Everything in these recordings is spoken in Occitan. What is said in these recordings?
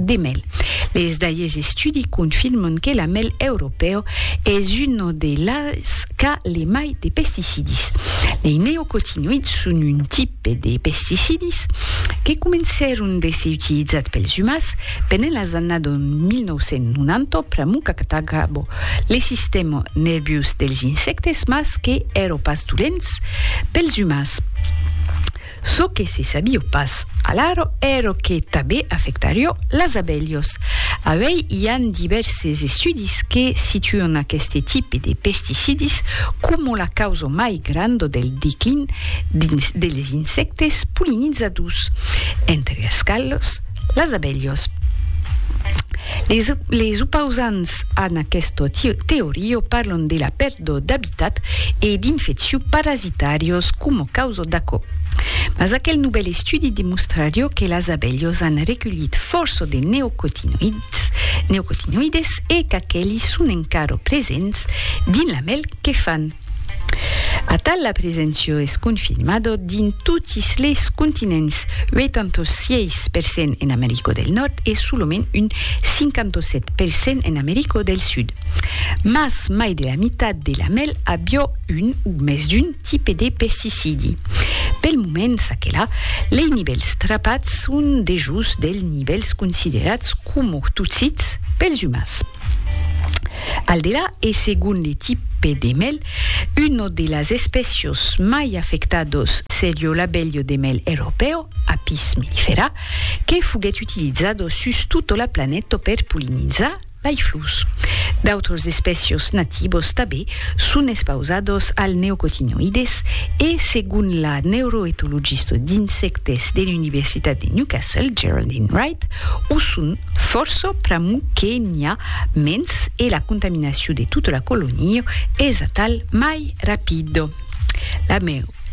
de mel. Les dailles estudi confirman que la mel europeo es una de las qu'a le mai de pesticidis. Les neocotinoïds son un tipe de pesticidis que comencèron de se utilizat pels umans pendent las annadas 1990 pr'amor qu'atacava le sistèma nerviós dels insèctes mas que èra pas dolents pels umans. Çò que se sabio pas alara èra que tanbe afectarió las abelhas. Auèi i an divèrses estudis que situan aqueste tipe de pesticidis coma la causa mai granda del declin de les insèctes polinizadors, entre es quals las abelhas. Les opausants a aquesta teoria parlan de la do d'abitat e d'infecciu parasitàrios coma causa d'aquò. Mas aquel novèl estudi demostrarió que las abelhos an reculhit fòrça de neocotinoïds, neocotinoïdes, e qu'aqueli son encara presents dins la mèl que fan. Atal la preséncia es confirmada dins totis les continents, 86 per cent en America del Nòrd e solament un 57 per cent en America del Sud. Mas mai de la mitat de la mèl avió un o mès d'un tipe de pesticidi. Pel moment, ça que la, lei nivèls trapats son dejós dels nivèls considerats coma totsits pels umans. Al delà, e segon le tipe de mèl, una de las espècios mai afectados serió l'abelho de mèl europèu, Apis mellifera, que foguèt utilizado sus tota la planeta per pollinizar Laiflus. D'autres espècios nativos tabé son espausados al neocotinoides e, segon la neuroetologista d'insèctes de l'Universitat de Newcastle, Geraldine Wright, o son fòrça pr'amor que n'i a mens e la contaminacion de tota la colonia es atal mai rapida. La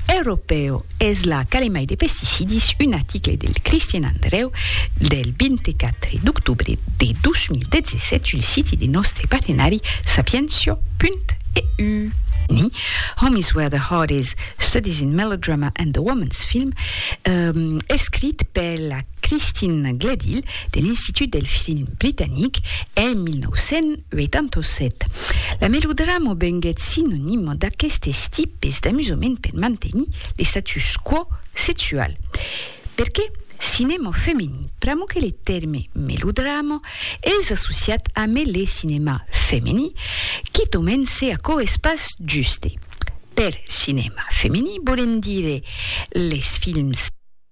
Europèu es la calemai de pesticidis, un article del Christian Andreu del 24 d'octobre de 2017 sul siti de nòstre partenari sapientia.eu. Ni, Home is where the heart is, Studies in Melodrama and the Woman's Film, escrit per la Christine Gledhill, de l'Institut del Film Britanic en 1987. La melodrama venguèt sinonima d'aquestes tipes d'amusament per mantenir l'estatus quo sexual. Perqué? Cinèma femení, pr'amor que le tèrme melodrama es associat amé le cinèma femení, quitament se aquò es pas juste. Per cinèma femení volem dire les films.